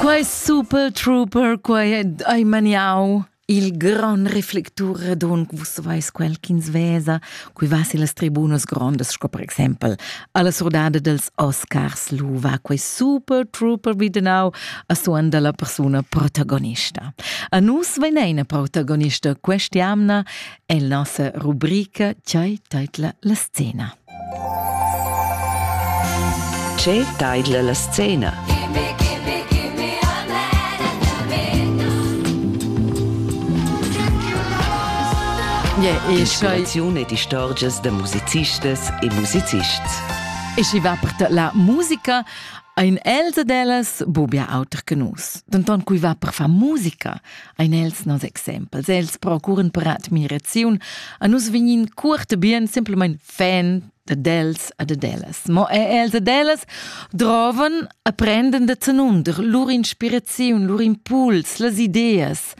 Quai super trooper, quai hai maniau il gran reflectur redon, vus veis quel ch'ins vesa, cui va si las tribunas grondas, sco per exempel alla surdada dels Oscars Luva, quei super trooper videnau a suan dalla persuna protagonista. A nus veneina protagonista quest'jamna è la nossa rubrica Chai teitla la scena. Che taidla la scena? Inspiraziun ed istorgias da musicistas e musicists. E schi va per la musica ein els ed ellas buca auter che nus. Denton cui va per far musica, ein els nos exempels. Els procuren per admiraziun. A nus vegnin cuort bien simpelmain fan ad els ad ad ellas. Mo er els ad ellas droven a prenden da tenunder lur inspiraziun, lur impuls, las ideas.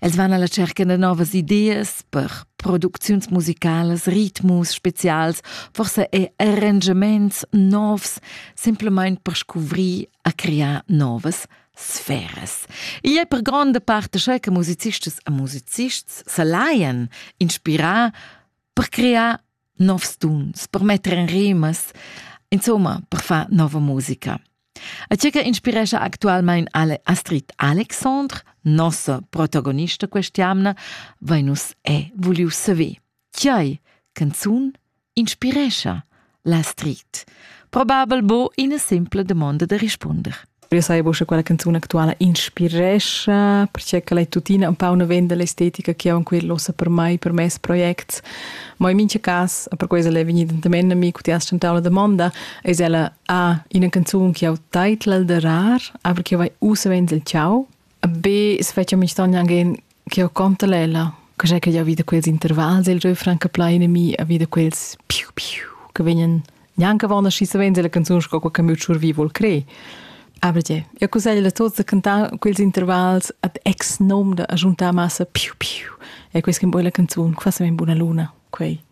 Els van alla cerca de novas ideas per producziuns musicalas, ritmus spezials, forse e arrangiaments novs, simpelmain per scuvrir a crear novas sferas. I è per gronda parte che musicistas e musicists se laien inspirar per crear novs tuns, per metter in rimas, insomma, per far nova musica. A ciò che inspiresce attualmente Ale Astrid Alexandre, nostra protagonista quest'anno, Venus è vogliu savere. Tgei canzun inspirescha la street? Probabel bo ina simpla domanda da rispunder. Io sai bo, che quella canzun actuala inspirescha, perché che l'è tuttina un po' una venda l'estetica che ho in quel ossa per mai, per mes projects. Ma in mincha cas, per questo è vegnida también a mi, che ti has tentau la domanda, es ella a ah, ina canzun che ho titla da rar, aber che vai usa venzel ciao, be svecchia mi stogn angen che ho contalella che sai che ja wieder quels intervals il reu franca plaine mi a wieder quels piu piu che vegnan neanche wann aschi savens la canzun sco quel che mi schurvi vol cre aber je ja cusaglia tots da cantar quels intervals ad ex nom da agiuntar massa piu piu e quels che boy la canzun quasi ben buna luna quei